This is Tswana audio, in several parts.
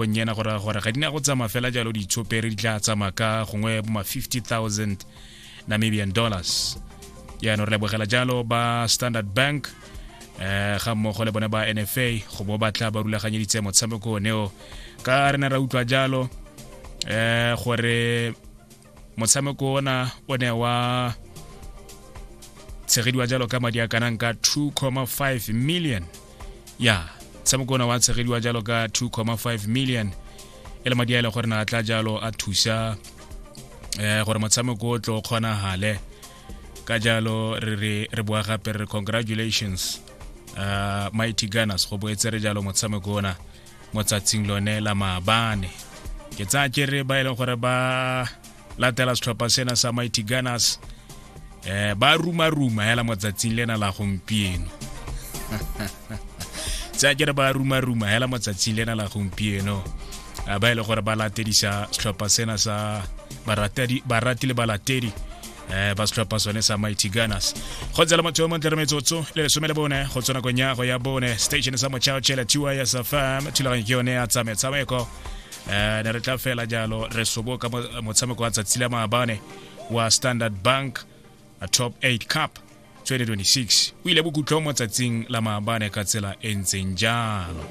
bonnyena go raya gore ga di na go tsamaya fela jalo ditshopere di tla tsamaya ka gongwe boma 50000 namibian dollars jaanong re lebogela jalo ba standard bank um ga mmogo le bone ba nfa go bo batla ba rulaganyeditse motshameko oneo ka re ne ra utlwa jalo um gore motshameko ona o ne wa tshegediwa jalo ka madi a kanang ka 2,5 million ya tshameko ona wa tshegediwa jalo ka 2,5 million e le madi a e le gore na tla jalo a thusa um gore motshameko o tlo kgonagale ka jalo re re re boa gape re congratulations uh, mighty gunners go boetse re jalo motshameko ona mo tsatsing lone la maabane ke tsaya ke re ba e leng gore ba latela setlhopha sena sa mighty gunners eh ba ruma ruma hela mo tsatsing lena la gompieno tsaya ke re ba ruma ruma hela mo tsatsing lena la gompieno ba e leng gore ba latedisa setlhopha sena sa baratedi baratile balatedi eh ba setlhopha sone sa mighty gunners go tsela motho yo montle re metsotso le lesome le bone go tswa nakong ya go ya bone station sa mochao chela tiwa ya safam thulaganyo ke yone ya tsametshameko eh ne re tla fela jalo re soboka motshameko wa tsatsi la maabane wa standard bank a top 8 cup 2026 o ile bokhutlho mo tsatsing la maabane ka tsela e ntseng jalo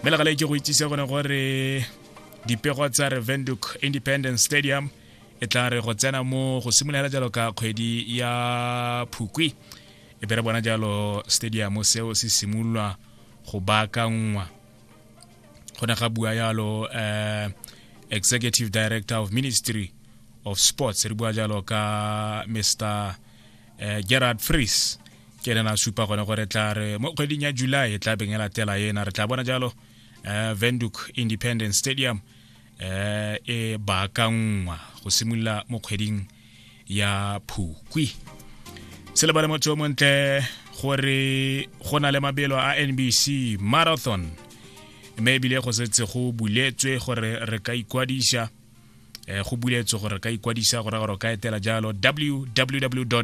mme legale ke go itsise gone gore dipego tsa revenduk independence stadium e tla re go tsena mo go simolola jalo ka kgwedi ya phukwi e bere bona jalo stadium seo se simololwa go baakangwa go ne ga bua jalo um executive director of ministry of sports re bua jalo ka mr uh, gerard fries ke ene na supa gone gore tla re mo kgweding ya july e tla beng e latela ena re tla bona jalo uh, venduk independent stadium eh, e baakanngwa go simolola mo kgweding ya phukwi se lebale motho yo montle gore go na le mabelo a nbc marathon mme ebile go setse go buletswe gore re ka ikwadisa eh, go buletswe gore re ka ikwadisa gore gore ka etela jalo www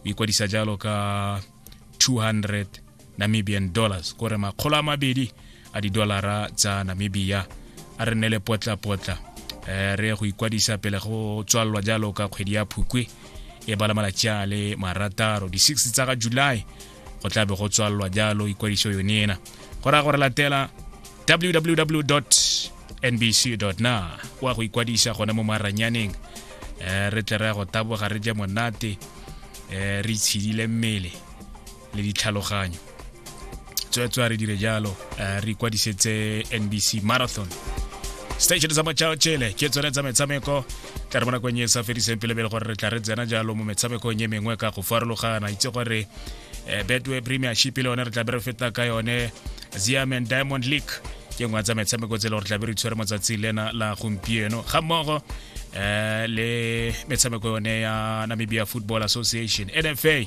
o ikwadisa jalo ka 200 namibian dollars kore makgolo a mabedi a didolara tsa namibia a re nne le potlapotla um re go ikwadisa pele go tswalelwa jalo ka kgwedi ya phukwe e bala malatsi a le marataro di-six tsa ga july go tla be go tswalelwa jalo ikwadiso yone ena go raya gore latela www nbc.na kwa go ikwadisa gona mo maranyaneng um re tle re ya go taboga re je monate um re itshedile mmele le ditlhaloganyo tswetswa re dire jalo um re ikwadisetse nbc marathon station sa machao chele ke tsone tsa metshameko tla re mo nakong e sa fediseng pele pele gore re tla re tsena jalo mo metshamekong e mengwe ka go farologana itse gore um betway premiership le yone re tla be re feta ka yone ziam and diamond league ke ngwe tsa metshameko tse le gore tlabe re tshwere motsatsi lena la gompieno ga mmogo um le metshameko yone ya namibia football association nfa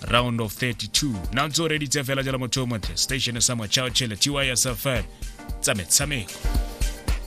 round of 32 na ntse o reditse fela jalo motho o montle station sa mochao chele tysfm tsa metshameko